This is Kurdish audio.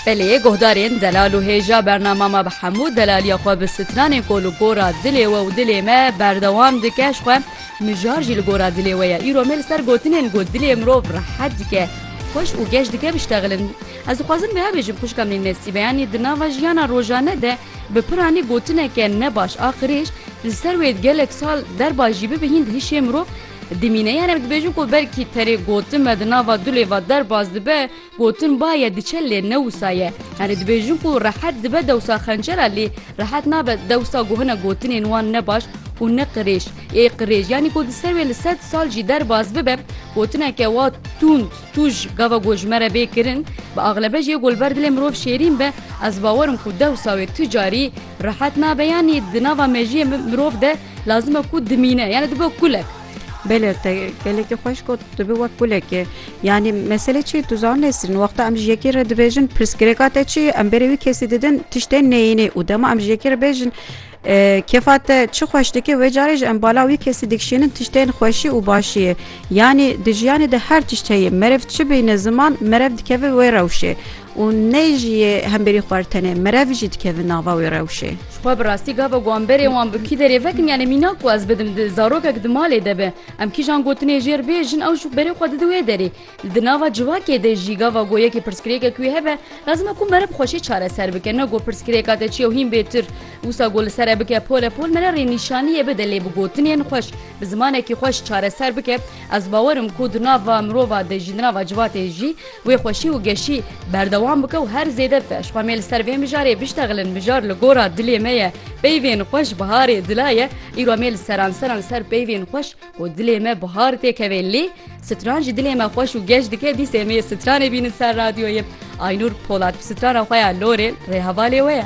Belê guhdarên zelal û hêja bernama me bi hemû zelaliya xwe bi stranên ku li gora dilê we û dilê me berdewam dike ji xwe mijar jî li gora dilê we ye. Îro me li ser gotinên ku dilê mirov rehet dike, xweş û geş dike biştexilin. Ez dixwazim wiha bêjim xwişka min Nesîbe yanî di nava jiyana rojane de bi piranî gotineke ne baş a qirêj li ser wê gelek sal derba jî bibe hîn di hişê mirov Dimîne yan em dibêjin ku belkî terê gotin me di nava du lêva derbas dibe, gotin ba ye diçe lê ne wisa ye. Yanî dibêjin ku rehet dibe dewsa xencera lê rehet nabe dewsa ku hinek gotinên wan ne baş û ne qirêj ê qirêj yanî ku di ser wê li sed sal jî derbas bibe gotineke wa tûnd tûj gava ku ji me re bê kirin bi axlebe jê ku li ber dilê mirov şêrîn be ez bawerim ku dewsa wê tu carî rehet nabe yanî di nava mejiyê mirov de Lazim e ku dimîne yani dibe kulek. Bêler te gelekî xweş got dibe wek kulekê. Yanî mesele çi tu zan nesîrin wexta em ji yekê re dibêjin pirsgirêka te çi ye em berê wî kesî didin tiştên neyînê û dema em ji yekê re bêjin kefa te çi xweş dike wê carê ji em bala wî kesî dikişînin tiştên xweşî û başî ye. Yanî di jiyanê de her tişt heye merev çi bîne ziman merev dikeve wê rewşê. Û ne jî yê hemberî xwe re tenê merev jî dikevin nava wê rewşê. Ji xwe bi rastî gava got em berê wan bi kî derê vekin yanê mîna ku ez bidim di zarokek di malê de be em kîjan gotinê jêr bê jin ew jî berê xwe didi wê derê. Li di nava civakê de jî gava got yekê pirsgirêkek wê hebe lazim e ku mere bi xweşê çareser bike ne got pirsgirêka te çi ye û hîn bêtir wisa got li ser e bike pole pol mere rê nîşanîyê bide lê bi gotinên xweş bi zimanekî xweş çareser bike ez bawer im ku di nava mirova de jî di nava civakê jî Wê xweşî û geşî berdewam bike û her zêde feş xwe mê li ser vê mijarê biştexilin mijar li gora dilê me ye peyvên xweş biharê dila ye îro mê li seranseran ser peyvên xweş ku dilê me bihar tê kevê lê stran jî dilê me xweş û geş dike dîsê mê stranê bînin ser radyoyê Aynur Polat strana xwe ya lorê rê hevalê we ye.